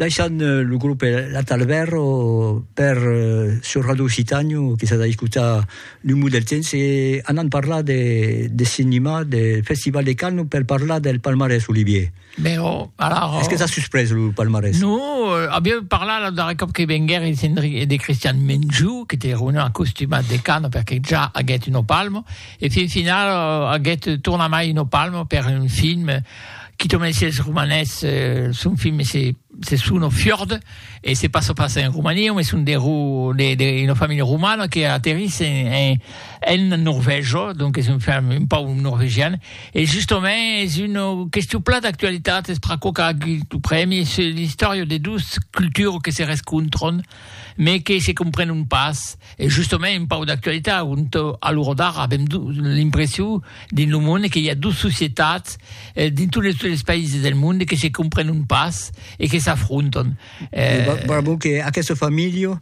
Daishan euh, lo grup La Talberro per euh, sur Radio Occitànio que s'ha d'escutar lo mot del temps e anant parlar de, de cinema, del Festival de Cannes per parlar del palmarès, Olivier. Ben, oh, alors... Oh. Est-ce que t'as surprise le palmarès Non, euh, a bien parlar la darrera cop que venguer et Henry de Christian Menjou, qui était revenu en costume de Cannes perché già a get une palme, e fin final euh, a get torna mai une palme per un film Quito me decies es romanés, son film se se sono fiord e se passo pas en Romania, me son de ro de de una familha romana que aterris en en Norvègia, donc es un film un pauc norvegian e justament es una question plan d'actualitat, es pr'aquò qu'a agut lo prèmi, se l'istòria de dos cultures que se rescontran. mais que se comprenent pas, e justament un pauc d'actualitat, ont a l'ora d'ara avèm l'impression dins lo monde que i a dos societats dins totes les païses del monde que se comprenent pas e que s'afrontan. Bravo que aquesta familha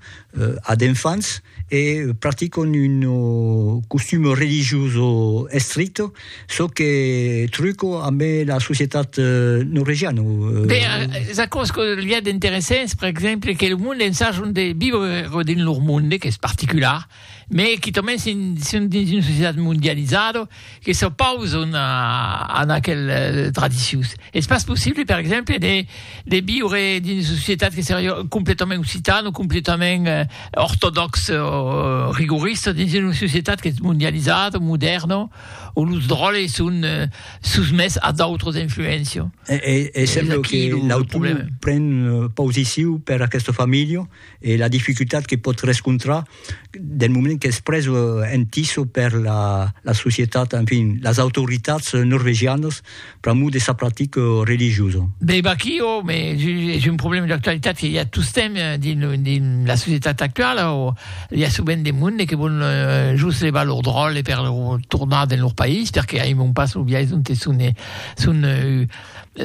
a d'enfants e practicant un costum religioso estricte. çò que truco amb la societat norvegiana. Beh, es aquò's que li a d'interessants, per exemple, que lo monde ensajon de viure dins lor monde, qu'es particular, me quitament si son dins una societat mondializada, que s'opauson a aquel tradicions. Es pas possible, per exemple, de, de viure dins una societat que seria completament occitana o completament eh, ortodoxa o rigorista dins una societat que es mondializada, moderna, o los dròlles son eh, susmès a d'autres influéncias. E, e, e sembla que l'autor pren eh, positiu per aquesta familha, e la dificultat que pòt rescontrar del moment qu'es pres en tiso per la, la societat, en fin, las autoritats norvegianas pr'amor de sa practica religiosa. Be vaqui, o, me, es un problèma d'actualitat que i a tostemp dins, dins la societat actuala, o i a sovent de monde que vòlon eh, just levar lor dròlle per tornar dins lor país, perque aimon pas lo biais onte son, son,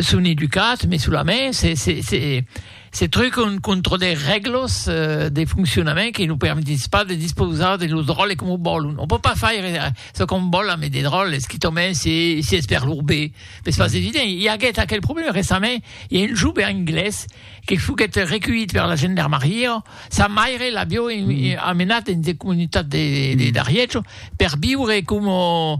son educats, me solament, se, se, se, Se trucon contra de règlas de foncionament que lo permetís pas de dispausar de los dròlles coma vòlon. On pòt pas faire çò qu'on vòl ambe de dròlles, quitament si es per lor be, m'es pas evident. I aguèt aquel problèma recentament, i a un jove anglés que foguèt reculhit per la gendarmariá, sa maire l'avió amenat dins de comunitats de d'Arièch per viure coma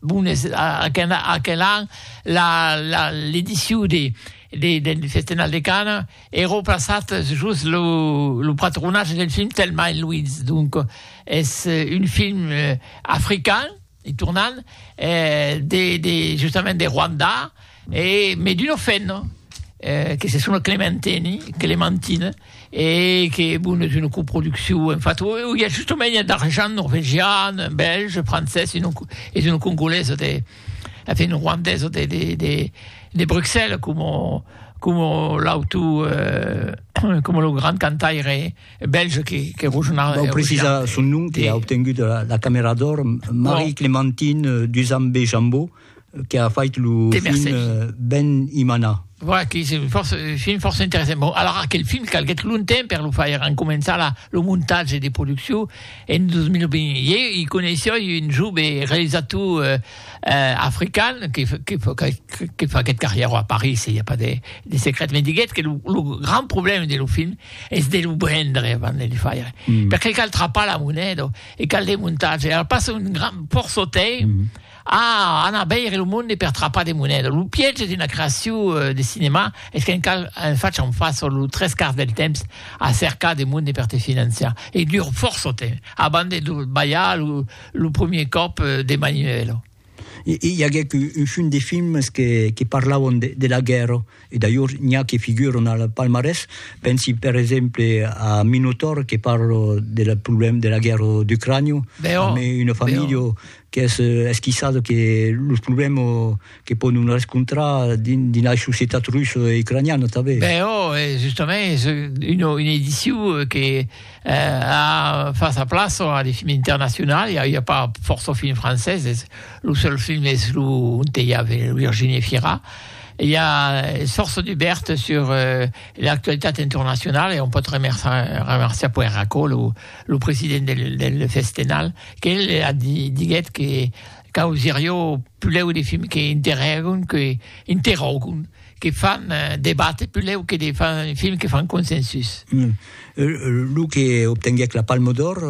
Bon, es aquel, aquel an, la, la, l'ediciu de, de, del Festenal de Cana e replaçat just lo, lo patronatge del film Thelma et Louise. Donc, es un film african, e tornant, eh, de, de, justament de Rwanda, E me d'uno fenno que se sono Clementeni, Clementin, e que bon es una coproduccion, en fat o i a justomènha d'argent norvegian, bèlge, francés e non es una congolesa de en fin ruandesa de de de de Bruxelles como como l'auto como lo grand cantaire bèlge que que Rogenau Vau precisar son nom que a obtengut la camèra d'òr Marie Clementine Duzambe Jambot que a fait lo de film Mercedes. Ben Imana. Voilà, que és un fòrça, film fòrça interessant. Bon, alara, aquel film calguèt longtemps per lo faire, en començar la, lo montatge de produccion en 2020. Ieu i coneissoi un jove realisator eh, eh, african que, que, que, que faguèt carrièra a París, i a pas de, de secret, me diguèt que lo, lo grand problème de lo film és de lo brendre avant de le faire. Mm. Perqué cal trapar la moneda e cal de montatge. Alors passa un grand porçotei mm. Ah! Anar veire lo monde per trapar de moneda. Lo piège d'una creacion de cinema es qu'en cal en fach en fas sos los tres quarts del temps a cercar de monde per te financiar. E dura fòrça temps abans de lo balhar lo premier còp de maniuèla. I aguèc un chum de films que parlavan de la guèrra. E d'ailhors n'i a que figuran al palmarès, pensi per exemple a Minotaur que parla de la problèm de la guèrra d'Ucrània, amé una familha qu'es esquissada que los problèm que pòdon rescontrar dins dins la societat russa e ucraniana tanben. Ben ò, e justament es una una ediciu que a fas a plaça a de films internacional, i a i a pas fòrça films francés, es lo seul film es lo ont i a Virginie Fira, I a Sorso Dubèrt sur l'actualitat entornacionala e on pòt remerciar puèi Racó, lo president del Festenal, qu'el diguèt que causirió pulèu de films que interrògon, que interrògon, que fan debatre pulèu que de films que fan consensus. Lo que obtenguèc la Palme d'Òr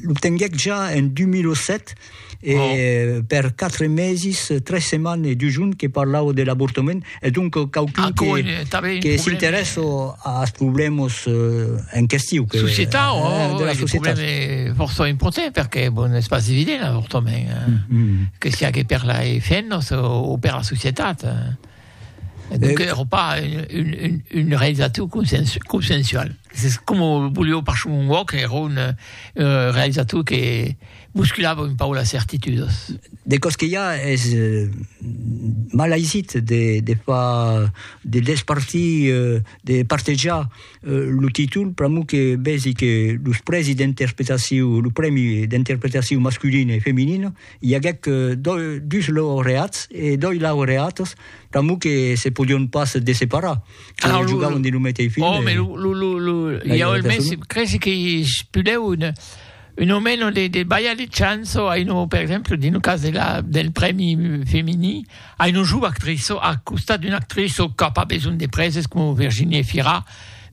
l'obtenguèc ja en 2007. e per quatre mesis, tres setmanes e dus jorns que parlà'u de l'avortament, e donc quauqu'un que s'interèssi als problèmas en question. Que, societau, eh, oh, de la societat. Un problème fòrça important, perque, bon, es pas evident l'avortament, que siá que per les femnas o per la societat. Donc, era pas un, un, un realisator consensu, consensual. C'est comme au Boulio par Shumon Walk, era un, un euh, realisator que bousculava un peu la certitude. De cos que ja és euh, mal aisit de, de fa, de despartir, euh, de partejar euh, lo títol, pramo que vesi que los prèsi d'interpretaciu, lo prèmi d'interpretaciu masculina e feminina, I aguèc dus laureats e doi laureatas, damb que se podion pas desseparar, que jogauen dins lo meteis film. Oh, mais lo, lo, lo, i a mès, cresi que pudèu un, un o meno de, de balhar de chanço a un, per exemple, dins lo cas de la, del prèmi femini, a un jove actriço, a costat d'una actriço qu'a pas besonh de prèses, coma Virginie Efira,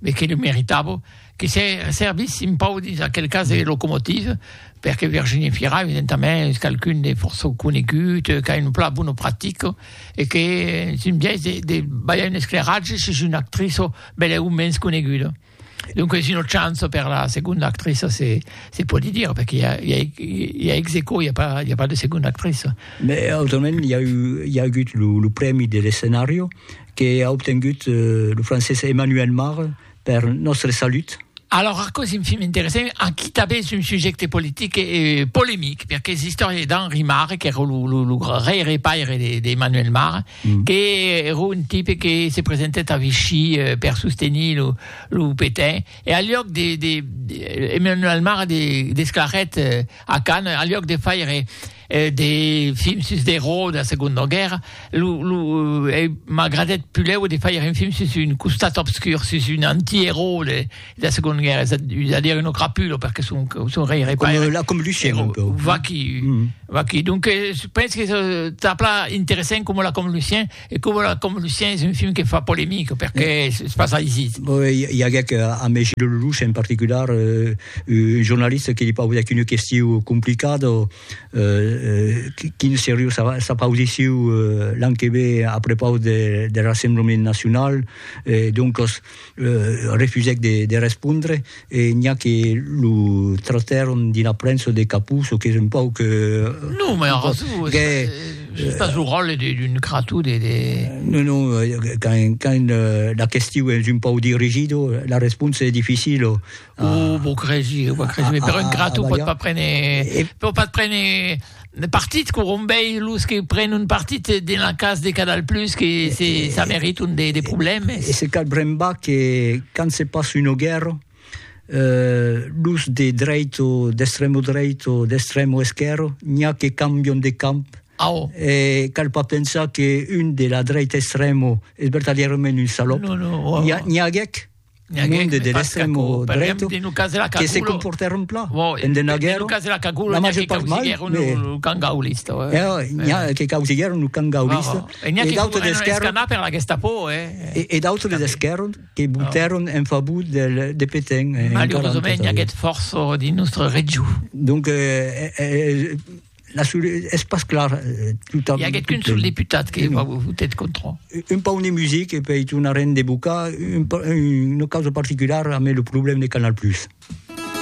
mais que lo meritava, que se servissin pau dins aquel cas de locomotive, perque Virginie Fira, evidentament, es qualqu'un de fòrça conegut, qu'a un plan bona practica, e que es un biais de, de balhar un escleratge sus una actriça bèla o mens coneguda. Donc es una chance per la seconda actriça, se, se pòdi dire, perque i a, i a, i a ex aequo, i a pas, i a pas de seconda actriça. Mais autrament, i a, eu, i a agut lo, lo prèmi de l'escenario que a obtengut eh, lo francés Emmanuel Mare, Per nòstre salut. Alòrs aquò se'n fim interessant, aquí tanben es un subjècte politic e polemic, perque es l'istòria d'Henri Marre, qu'èra lo gaire paire d'Emmanuel Marre, qu'èra un tipe que se presentèt a Vichy per sostenir lo Pétain, e al luòc de, Emmanuel Marre desclarèt a Cannes, al luòc de faire de films sus d'erò de la segonda guèrra lo lo m'agradèt pulèu de faire un film sus un costat obscur sus un anti-erò de la segonda guèrra es a dire un crapulo perque son son rèire pas comme là comme Lucien un peu va qui va qui donc je pense que ça plat interessant comme là comme Lucien E coma la com Lucien es un film que fa polemic perque eh. se passa aisit. Bon, i aguec ambe Gilles Lellouche en particular euh, un jornalista que li paudic una question complicada euh, quin seriu s'apaudiciu euh, l'an que ve a prepaus de, de Rassemblement Nacional, eh, doncas refusèc de respondre e n'i a que lo trotèron dina prensa de capús, o qu'es un pauc... Non, mai ara tu, es pas lo ròtle d'un crató de... Non, non, quand la question es un pauc dirigido, la responsa es dificila. Ah. Oh, vos cresi, vos cresi, ah, però ah, ingrato ah, pot pas prendre, e... pot pas prendre partit que rombei los que pren un partit de la cas de Canal Plus que e, se, e, ça mérite un des de problèmes. Et c'est cal bremba que quand se passe une guerre, euh, los de dreito, d'extremo dreito, d'extremo esquerro, n'y a que cambion de camp Ah, oh. Et cal pas penser qu'une de la droite extrême est vertadèrement une salope. Non, non, oh, oh. N'y a, n'y a un monde de l'extremo dreto que se comportèron plan en de naguèro la major part mal lo camp gaulista n'hi a que causiguèron lo camp gaulista e n'hi a que foguèron escanats per la Gestapo e d'autres de l'esquèrra que votèron en favor de Pétain malheureusament i aguèt fòrça dins nòstre region donc La sur, es pas clar eh, tot amb... Hi aguèt qu'un sol deputat que va votet contra. Un pauc de music e pei tornarem de bocar un, una causa particulara, amé lo problèm de Canal Plus.